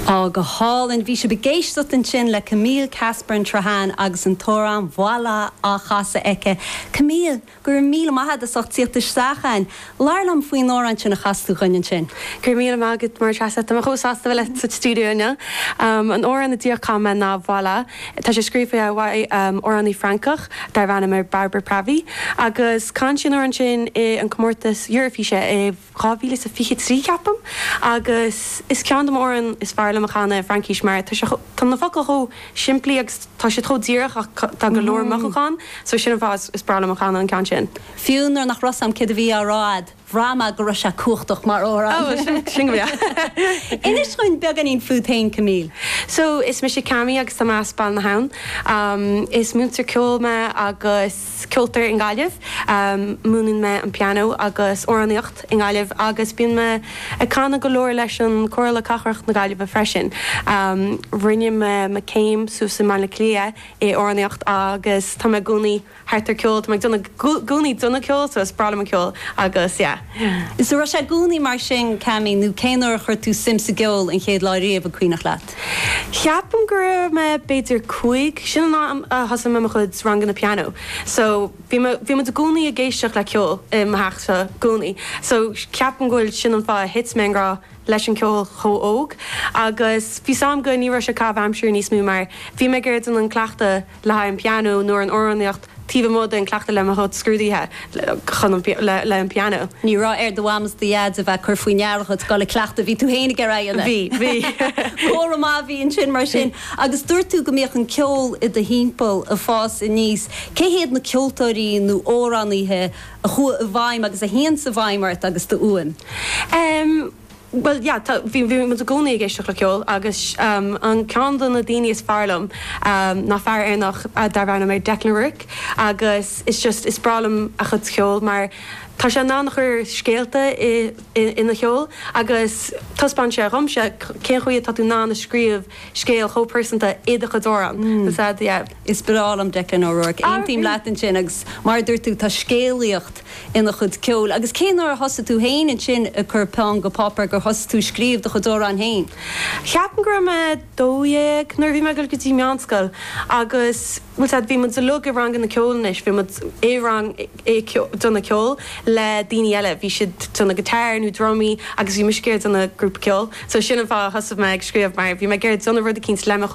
Á, go hálainn. Bhí sibh ag éisteacht ansin le Camille Casper an tSrutháin agus an t-amhrán Voilà á chasadh aici. Camille, go raibh míle maith a'd as ucht tíocht isteach ann. Labhair liom faoin amhrán sin a chas tú dhuinn ansin. Go raibh míle maith agat a Mháire Treasa, tá mé chomh sásta a bheith leat sa stiúideo inniu. An amhrán a díreach chan mé ná Voilà. Tá sé scríofa ag amhránaí Francach darbh ainm Barbara Pravi agus chan sí an amhrán sin i an comórtas Eurofíse i 2020 trí, ceapaim, agus is ceann de mo amhráin is fearr liom a chanadh i Fraincis mar tá sé chomh, tá na focail chomh simplí agus tá siad chomh díreach ach tá go leor mothúchán ann so sin an fáth is is breá liom a chanadh an ceann sin. Fiú nuair nach raibh a fhios 'am céard a bhí á rá a'd, bhraith mé go raibh sé cumhachtach mar amhrán. Oh, sin, sin go breá. Inis dhúinn beagáinín fút féin, Camille. So, is mise Cami agus tá mé as Béal na hAbhann. Is múinteoir ceoil mé agus. ceoltóir i nGaillimh. Múineann mé an pianó agus amhránaíocht i nGaillimh agus bíonn mé ag canadh go leor leis an Comhairle Cathrach na Gaillimhe freisin. Rinne mé mo céim suas i mBaile Átha Cliath i amhránaíocht agus tá mé i gcónaí thart ar ceol. Tá mé ag déanamh i gcónaí déanamh ceol so is breá liom an ceol agus yeah. So raibh sé i gcónaí mar sin, Cami, nó cén uair a chuir tú suim sa gceol an chéad lá riamh an cuimhneach leat? Ceapaim go raibh mé b'fhéidir cúig, sin an am a thosaigh mé mo chuid ranganna pianó so bhí mé, bhí muid i gcónaí ag éisteacht le ceol i mo theach i gcónaí so ceapaim go bhfuil sin an fáth a thit mé i ngrá leis an ceol chomh óg agus bhí 's 'am go ní raibh sé caitheamh aimsire níos mó mar bhí mé ag iarraidh déanamh cleachtadh le haghaidh an pianó nó an amhránaíocht taobh amuigh den cleachtadh le mo chuid scrúdaithe chun an le an pianó. Ní raibh ar do mham is do dhaid a bheith ag cur faoi ndeara dhuit dul ag cleachtadh, bhí tú féin ag iarraidh Bhí, bhí. Comhartha maith a bhí ansin mar Bhí. sin. Agus dúirt tú go mbíodh an ceol i do thimpeall ag fás aníos. Cé hiad na ceoltóirí nó amhránaithe a chuaigh i bhfeidhm agus a théanns i bhfeidhm ort agus do fhuaim? Em. Bhuel, yeah, tá, bhí, bhí muid i gcónaí ag éisteacht le ceol agus an, ceann de na daoine is fearr liom ná fear Éireannach darbh ainm é Declan O'Rourke agus is just, is breá liom a chuid cheoil mar tá sé in ann a chur scéalta i, i, ina cheol agus taispeánann sé dhomsa cén chaoi atá tú in ann a scríobh scéal chomh pearsanta i do chuid amhrán. Is ea, yeah. Is breá liom Declan O'Rourke. Aontaím leat ansin agus mar a dúirt tú, tá scéalaíocht ina chuid ceoil agus cén uair a thosaigh tú féin ansin ag cur peann go páipéar gur thosaigh tú ag scríobh do chuid amhráin féin? Ceapaim go raibh mé 12 nuair a bhí mé ag dul go dtí meánscoil agus bhfuil sé bhí muid uilig i ranganna ceoil anois bhí muid i rang ag déanamh ceoil le daoine eile bhí siad ag déanamh guitar nó drumaí agus bhí muid ag iarraidh déanamh grúpa ceoil so sin an fáth a thosaigh mé ag scríobh mar bhí mé ag iarraidh déanamh rud eicínt le mo chuid